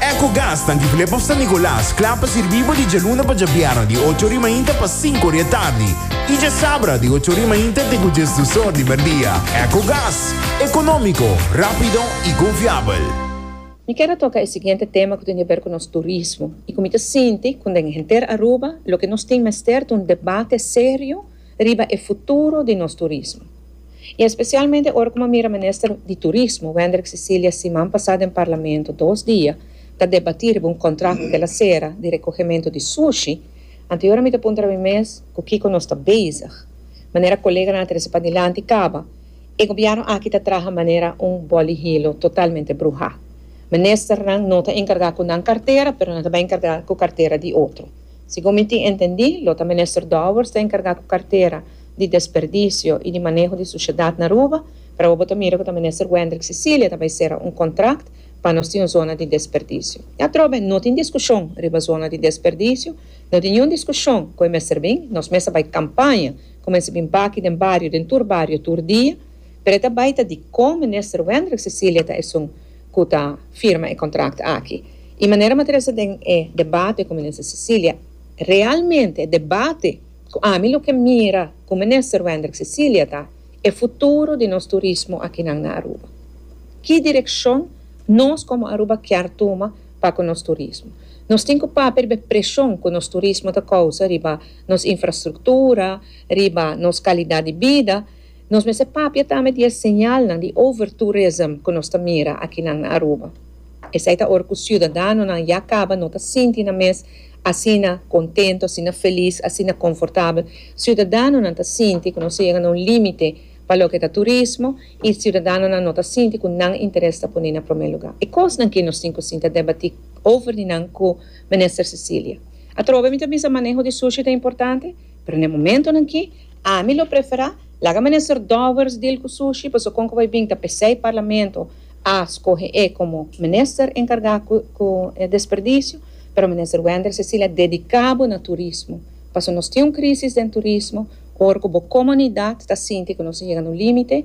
Ecogas ta Antiplep of San Nicolas kla pa sirbi bo di djaluna pa djabièrnè di ocho ori mainta pa sinku ori e tardi i djasabra di ocho ori mainta te ku djes dus or di merdia. Ecogas, ekonómiko, rápido i konfiabel. Mi ker a toka e siguiente tema ku tin di haber ku nos turismo i ku mi ta sinti ku den henter Aruba loke nos tin mester ta un debate serio riba e futuro di nos turismo. I espesialmente ora ku mi a mira Minister di Turismo, Wendrick Cecilia siman pasá den Parlamento dos dia ta debatí riba un kontrakto kila sera di rekohementu di sushi, anteora mi ta puntra mi mes ku kiko nos ta bezig. Manera koleganan a trese padilanti kaba, e gobièrnu aki ta traha manera un boli hilo totalmente bruhá. Ministernan no ta enkargá ku nan kartera, pero nan ta bai enkargá ku kartera di otro. Segun mi tin entendi, lo ta Minister Dowers ta enkargá ku kartera di Desperdisio i di Maneho di Sushedat na Aruba, pero awo bo ta mira ku ta Minister Wendrick Cecilia ta bai sera un kontrakt pa nos tin un zona di desperdisio. I atrobe no tin diskushon riba zona di desperdisio, no tin niun diskushon ku e mester bin, nos mes a bai kampaña ku mester bin baki den bario, den tur bario tur dia, pero e ta bai ta dikon Minister Wendrick Cecilia ta esun ku ta firma e kontrakt aki. I manera material sa den e debate ku Minister Cecilia, realmente e debate ku ami lo ke mira ku Minister Wendrick Cecilia ta e futuro di nos turismo akinan na Aruba. Ki direkshon nos komo Aruba kier tuma pa ku nos turismo? Nos tin ku papia riba e preshon ku nos turismo ta kousa riba nos infrastruktura, riba nos kalidat di bida, Nos mester papia tambe di e señalnan di overtourism ku nos ta mira akinan na Aruba. Esei ta ora ku siudadanonan ya kaba no ta sinti nan mes asina kontentu, asina felis, asina konfortabel. Siudadanonan ta sinti ku nos ta yega na un límite pa loke ta turismo i siudadanonan no ta sinti ku nan interes ta pone na promé lugá. E kosnan ke nos tin ku sinta debatí over di nan ku Minister Cecilia. Atrobe mi ta bisa maneho di sushi ta importante? Pero n'e momentonan aki, ami lo prefera, laga Minister Dowers dil cu sushi, pasobra con cu bay bin ta pesey Parlamento a scoge e como Minister encarga cu e desperdicio, pero Minister Wender Cecilia dedica bo na Turismo, pasobra nos tin un crisis den Turismo, ora cu bo comunidad ta sinti cu nos a yega na un limite,